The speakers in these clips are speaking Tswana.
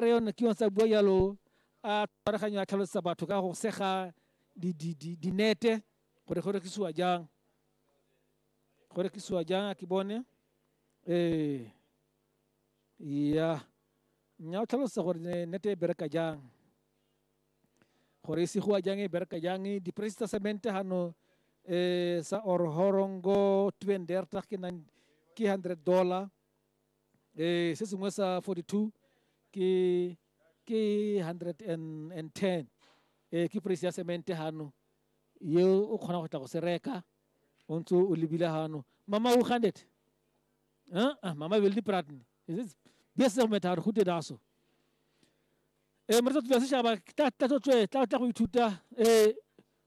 re yone ke yone sa bua jalo a tshwaraganyo a tlhalosetsa batho ka go sega di- di- di- dinete gore go rekisiwa jang go rekisiwa jang a ke bone ee ya nya o tlhalosetsa gore ne- nete e bereka jang gore e segiwa jang e bereka jang di-price tsa cement gano um sa or horongo twendertag ke nine- ke hundred dollar eh se sengwe sa 42 ke ke 110 eh ke price ya cement hano ye o kgona go tla go se reka o ntse o lebile hano mama o 100 ah ah mama will diprat ne is it bese go metharo go te daso eh mre tsa tsa se shaba tla tla tla tla go ithuta eh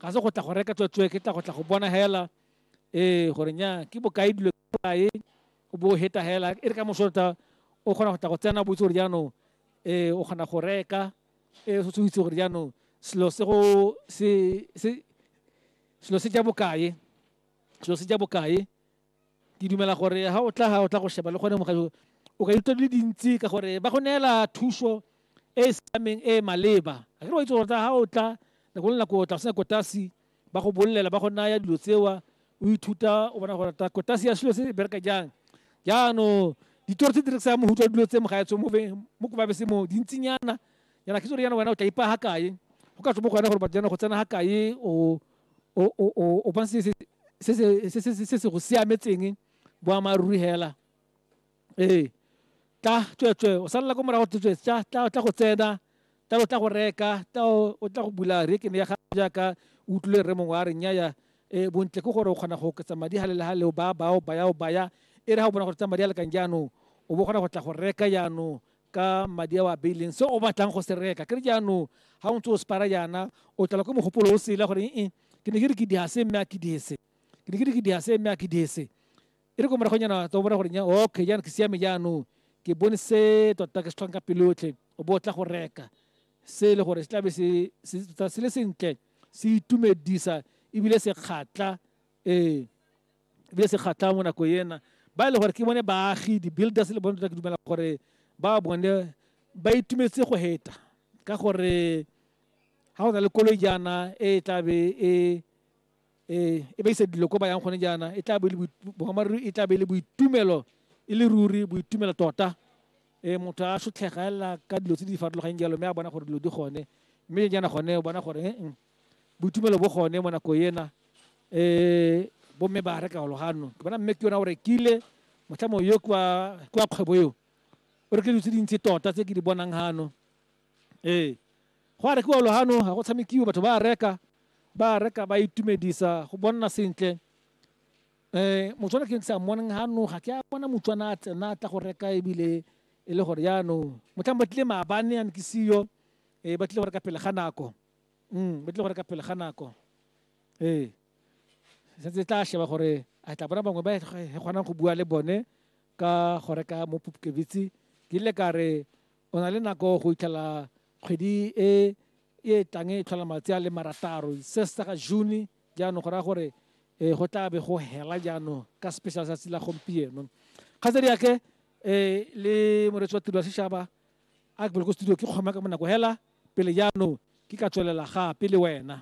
ga se go tla go reka tswetswe ke tla go tla go bona hela ee gore nya ke bokae dilo kae o bo heta hela e re ka mosorota o kgona go tla go tsena botse gore jaanong ee o kgona go reka ee se itse gore jaanong selo se go se selo se ja bokae selo se ja bokae ke dumela gore ha o tla ha o tla go sheba le gone mogajo o ka itse di le dintsi ka gore ba go neela thuso e e siameng e e maleba a ke wa itse gore ha o tla nako le nako o tla sena kotasi ba go bolelela ba go naya dilo tsewa o ithuta o bona gore ta kotasi ya selo se bereka jang jaanong ditoro tse di rekisang mohuta dilo tse mogaetso mo mo ko babese mo dintsinyana yana ke tsore yana wena o tla ipa ha kae go ka tswa mo go wena gore batho jana go tsena ha kae o o bona se se go siametseng boammaaruri hela ee tla tsweetswe o salela ko morago tsweetswe tla tla go tsena tla o tla go reka tla o tla go bula rekene ya gago jaaka o utlwile re mongwe a re nyaya um bontle ke gore o kgona go oketsa madi ga le le ga leo ba bao baya o baya e re ga o bona gore tsa madi a lekang jaanong o bo kgona go tla go reka jaanong ka madi a o a beileng se o batlang go se reka ke re jaanong ga o ntse o separa jaana o tlala ko mogopolo o sela gore ee ke ne ke re ke diase mme a ke diese ke ne ke re ke diase mme a ke diese e re ko moragonyana tsa o bona gore nya okay jaana ke siame jaanong ke bone se tota ke se tlhokang ka pelo yotlhe o bo o tla go reka se e le gore se tlabe se tota se le sentle se itumedisa ebile se kgatla ee ebile se kgatlhang mo nako ena ba e le gore ke bone baagi di-builders le bone tota ke dumela gore ba bone ba itumetse go heta ka gore ga go na le koloi jaana e tla be e e e ba isa dilo ko ba yang gone jaana e tla be boammaaruri e tla be le boitumelo e le ruri boitumelo tota um motho a sotlhega elela ka dilo tse di farologaneng jalo mme a bona gore dilo di gone mme jaana gone o bona gore boitumelo bo gone mo nako ena um bomme ba reka olo ganong ke bona mme ke yona o rekile motlhamo yo kwa kgwebo eo o rekile dilo tse dintsi tota tse ke di bonang gano ee go a rekiwa olo gano ga go tshamekiwe batho ba reka ba reka ba itumedisa go bonna sentle um motswana ke sa moneng gano ga ke a bona motswana a tsena tla go reka ebile e le gore jaanong motlhang ba tlile maabane a ne ke seyo um ba tlile go reka pele ga nako Mm, ba tlile go reka pele ga nako ee setse tla sheba gore a tla bona bangwe ba e kgonang go bua le bone ka go reka mo pupkebitse ke ile ka re o na le nako go itlhela kgwedi e e tlang e tlhola matsi a le marataro se se ga june jaanong go raya gore um go tla be go hela jaanong ka special tsatsi la gompieno kgatsedi yake um le moretsi wa tiro ya setšhaba a ke pele ko studio ke kgoma ka bonako hela pele jaanong ke ka tswelela gape le wena